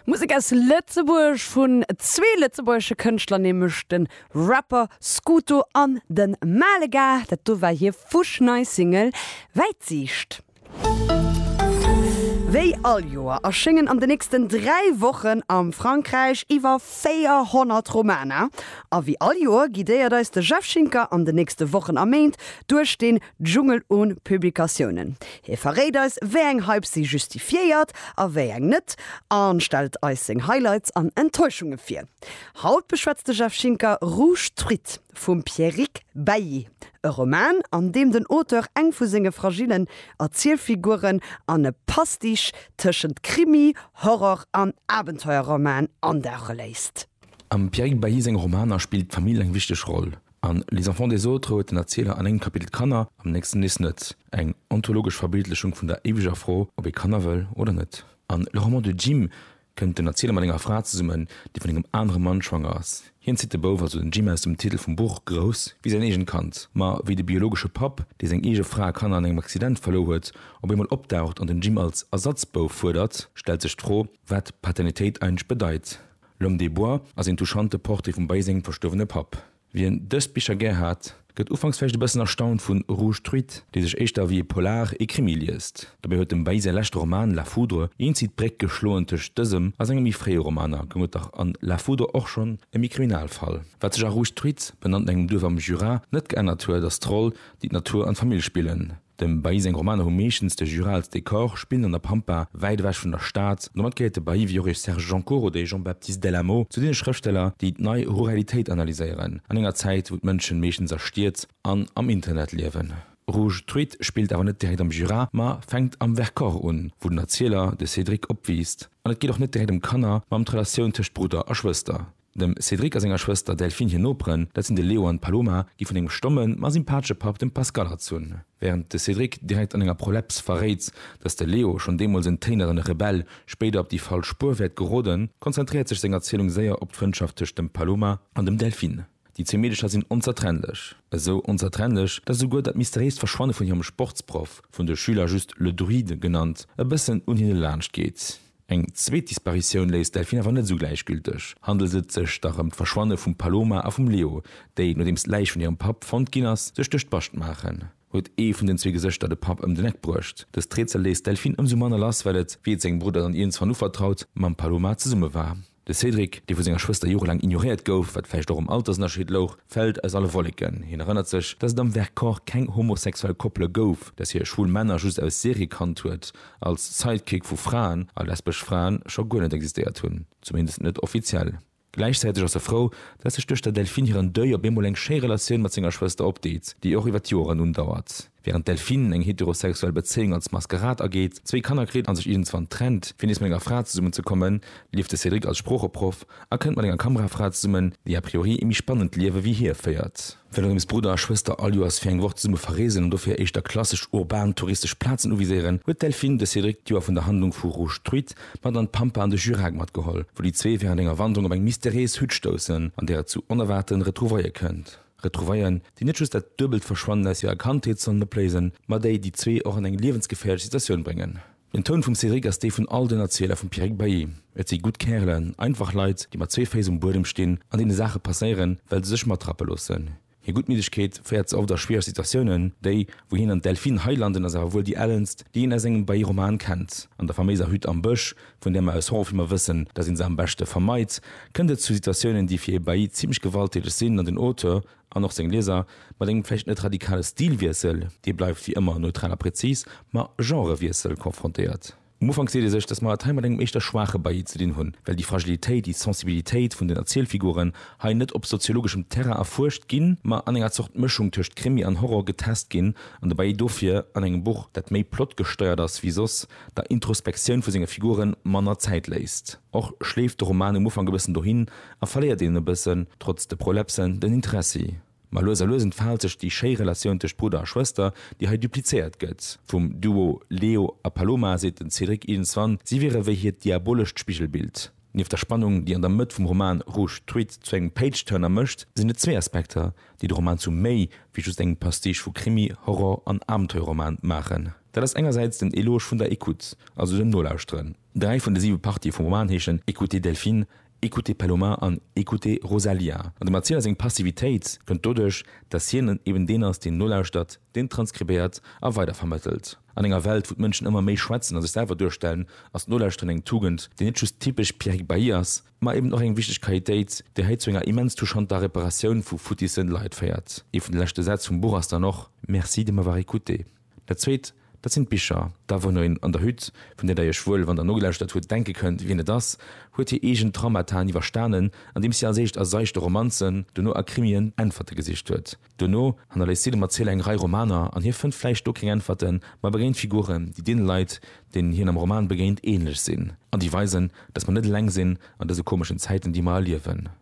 Musek aus Lëtzebuerg vun zwee lëtzebuergesche Kënschtler, nämlech de Rapper Scuto an de Malega. Dat do war hir fusch nei Single Wäitsiicht. Wéi all Joer erschéngen an de nächsten dräi Wochen a Frankräich iwwer 400 Romaner. A wéi all Joer guidéiert eis de Jeff Schinker an de nächste Wochen a Méint duerch dee Dschungel un Publikatiounen. Hie verréit eis, wéi eng Hypes si justifiéiert a wéi eng net a stellt eis seng Highlights an Enttäuschunge vir. Haut beschwätzt de Jeff Schinker Rouge Truite vum Pierrick Bailly, e Roman, an deem den Auteur eng vu senge fragillen Erzielfiguren an e Pastiche tëschent Krimi, Horror an Abenteuerroman andauche léisst. Am Pierrick Bailly senge Romaner spillt d'Famill eng wichteg Roll. An Les enfants des autres huet den Erzieler an engem Kapitel d'Kanner, am nächsten nees net. Eng ontologesch Verbildlechung vun der éiweger Fro, ob ee Kanner wëll oder net. An Le roman de Jim kënnt den Erzieler mat enger Fra zesummen, déi vun engem anere Mann schwanger ass. Hien zitt de Bouf, also den Jim, aus dem Titel vum Buch grouss wéi säin eegent Kand. Ma wéi de biologesche Papp, dee seng eege Fra a Kanner an engem Accident verluer huet, op eemol opdaucht an den Jim als Ersatzbouf fuerdert, stellt sech d'Fro, wat Paternitéit eigentlech bedeit. L'homme des bois ass een touchante Portrait vum bei sengem verstuerwene Papp. Wien dës Bicher gär hat, gëtt ufanks vläicht e bëssen erstaunt vun Rouge truit, dee sech éischter ewéi e Polar, e Krimi liest. Dobäi huet dem Bay säi leschte Roman La foudre eenzi d'Bréck geschloen tëscht dësem a senge méi fréie Romaner, goung et dach an La foudre och schonn ëm ee Kriminalfall. Wat sech a Rouge truit, benannt no engem Duerf am Jura, net geännert huet, ass d'Roll, déi d'Natur an d'Famill spillen, Dem Bailly seng Romaner hu meeschtens de Jura als Dekor, spillen an der Pampa, wäit ewech vun der Stad. Domat gehéiert de Bailly, wéi och e Serge Joncour oder e Jean-Baptiste Del Amo, zu deene Schrëftsteller, déi d'Nei Ruralitéit analyséieren, an enger Zäit, wou d'Mënschen meeschtens a Stied an am Internet liewen. Rouge Truite spillt awer net direkt am Jura, ma fänkt am Vercors un, wou den Erzieler, de Cédric, opwiisst. An et geet och net direkt ëm Kanner, ma ëm d'Relatioun tëscht Brudder a Schwëster. Dem Cédric a senger Schwëster Delphine hir Noperen, dat sinn de Leo an d'Paloma, gi vun engem stommen, ma sympatesche Papp, dem Pascal, erzunn. Wärend de Cédric direkt an enger Proleps verréit, datt de Leo, schonn deemools en téineren Rebell, spéider op déi falsch Spuer wäert geroden, konzentréiert sech seng Erzielung séier op d'Frëndschaft tëscht dem Paloma an dem Delphine. Déi zwee Meedecher sinn onzertrennlech. Esou onzertrennlech, datt esouguer dat mysteriéist Verschwanne vun hirem Sportsproff, vun de Schüler just le Druide genannt, e bëssen un hinne laanscht geet. Eng zweet Disparitioun léisst d'Delphine awer net esou gläichgülteg. Handelt et sech da rëm d'Verschwanne vum Paloma a vum Leo, déi, nodeems d'Läich vun hirem Papp fonnt ginn ass, sech duerch d'Bascht maachen? Huet ee vun den zwee Gesëschter de Papp ëm den Eck bruecht? Dëst Rätsel léisst d'Delphine ëmsou manner lass, well et, wéi et sengem Brudder dann iergendwann uvertraut, mam Paloma zesumme war. De Cédric, dee vu senger Schwëster jorelaang ignoréiert gouf, wat vläicht och um Altersënnerscheed louch, fält aus alle Wolleken. Hien erënnert sech, dass et am Vercors keng homosexuell Koppele gouf, dass hie schwul Männer just aus Serie kannt huet, als Sidekick vu Fraen, a lesbesch Fraen scho guer net existéiert hunn, zumindest net offiziell. Gläichzäiteg ass e frou, dass sech duerch der Delphine hiren Deuil op eemol eng schéi Relatioun mat senger Schwëster opdeet, déi och iwwer d'Joren undauert. Während d'Delphine eng heterosexuell Bezéiung als Maskerad ageet, zwéi Kanner kritt an sech iergendswann trennt, fir nees mat enger Fra zesummenzekommen, leeft de Cédric als Sproocheproff a kënnt mat enger Kamerafra zesummen, déi a priori ee méi spannend Liewe wéi hie féiert. Well Rims Brudder a Schwëster all Joers fir eng Woch zesumme verreesen an dofir éischter klassesch urban touristesch Plazen uviséieren, huet d'Delphine de Cédric d'Joer vun der Handlung vu Rouge Truite mat an d'Pampa an de Jurac matgeholl, wou déi zwee während enger Wanderung op eng mysteriéis Hütt stoussen, an där et zu onerwaarten Retrouvaille kënnt. Retrouvaillen, déi net just dat duebelt Verschwannen aus hirer Kandheet sollen opléisen, ma déi déi zwee och an eng liewensgeféierlech Situatioun bréngen. Den Toun vum Cédric ass dee vun all den Erzieler vum Pierrick Bailly. Et si gutt Kärelen, einfach Leit, déi mat zwee Féiss um Buedem stinn, an deene Saache passéieren, well se sech matrappe loossen. Hir Guttmiddegkeet féiert se oft a schwiereg Situatiounen, déi, wou hien an d'Delphine hei landen, ass awer wuel déi ellenst, déi een aus engem Bailly-Roman kennt, an der faméiser Hütt am Bësch, Vun där mer aus Hong Filmer wëssen, dass ee se am beschte vermeit, kënnt et zu Situatiounen, déi fir ee Bailli zimmlech gewalttäteg sinn an den Auteur, an och seng Lieser, mat engem vläicht net radikale Stilwiessel, dee bleift wéi ëmmer neutral a prezis, ma Genrewiessel konfrontéiert. Um Ufank seet ee sech, dass mer et hei mat engem éischter schwaache Bailli ze dinn hunn, well déi Fragilitéit, déi Sensibilitéit vun den Erzielfiguren hei net op soziologeschem Terrain erfuerscht ginn, ma an enger Zort Mëschung tëscht Krimi an Horror getest ginn, an de Bailli dofir an engem Buch, dat méi Plot gesteiert ass wéi soss, der Introspektioun vu senge Figuren manner Zäit léisst. Och schleeft de Roman um Ufank e bëssen dohin a verléiert een e bëssen, trotz de Prolepsen, den Interessi. Ma lues a lues entfaalt sech déi schéi Relatioun tëscht Brudder a Schwëster, déi hei duplizéiert gëtt. Vum Duo Leo a Paloma seet den Cédric iergendswann, si wiere wéi hiert diabolescht Spigelbild. Nieft der Spannung, déi an der Mëtt vum Roman Rouge Tweed zu engem Page-Turner mécht, sinn et zwee Aspekter, déi de Roman zu méi wéi just engem Pastiche vu Krimi, Horror an Abenteuerroman maachen. Dat ass engersäits den Eloge vun der Écoute, also dem Nolauschteren. Dräi vun de siwe Partië vum Roman heeschen Écoutez Delphine, Écoutez Paloma an Écoutez Rosalía. An dem Erzieler seng Passivitéit kënnt doduerch, datt hien eben deen ass, deen nolauschtert, deen transkribéiert a weidervermëttelt. An enger Welt, wou d'Mënschen ëmmer méi schwätzen a sech selwer duerstellen, ass d'Nolauschteren eng Tugend, déi net just typesch Pierrick Bailly ass, ma eben och eng wichteg Qualitéit, déi hei zu enger immens touchanter Reparatioun vu futisse Leit féiert. Ee vun de leschte Sätz vum Buch ass dann och Merci de m'avoir écouté. Dat Zweet, dat sinn d'Bicher. Da wou no een an der Hütt, vun där Der Iech wuel, wann Der nogelauschert hutt, denke kënnt, wien et ass, huet hir eegen Traumataen iwwerstanen, andeems si als éischt a seichte Romanzen, dono a Krimien Äntwerte gesicht huet. Dono hannerléisst si dem Erzieler eng Rei Romaner, an hie fënnt vläicht do keng Äntwerten, ma e begéint Figuren, déi deene Leit, deenen hien am Roman begéint, ähnlech sinn an déi weisen, dass mer net eleng sinn an dëse komeschen Zäiten, déi mer erliewen.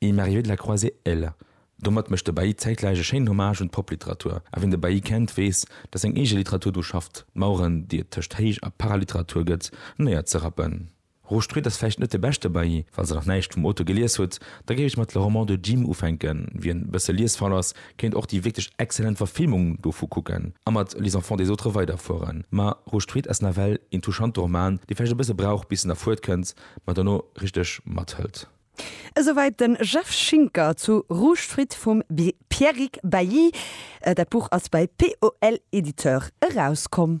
Il m'est arrivé de la croiser elle. Domat mécht de Bailly zäitgläich e schéinen Hommage un d'Popliteratur. A wien de Bailly kennt, weess, datt seng eege Literatur dru schafft, d'Maueren, déi et tëscht Héich a Paraliteratur gëtt, néierzerappen. Rostruit ass vläicht net de beschte Bailly. Falls Der nach näischt vum Auteur gelies hutt, da géif ech mat Le roman de Jim ufänken. Wien e bësse liesfaul ass, kéint och déi wierklech exzellent Verfilmung dovu kucken a mat Les enfants des autres weiderfueren. Ma Rostruit ass nawell een touchante Roman, dee vläicht e bësse brauch, bis en erfuertkënnt, ma dono richteg mathëlt. Esouwäit den Jeff Schinker zu Rouge-Fruit vum Pierrick Bailly. Dat Buch ass bei POL Éditeurs erauskomm.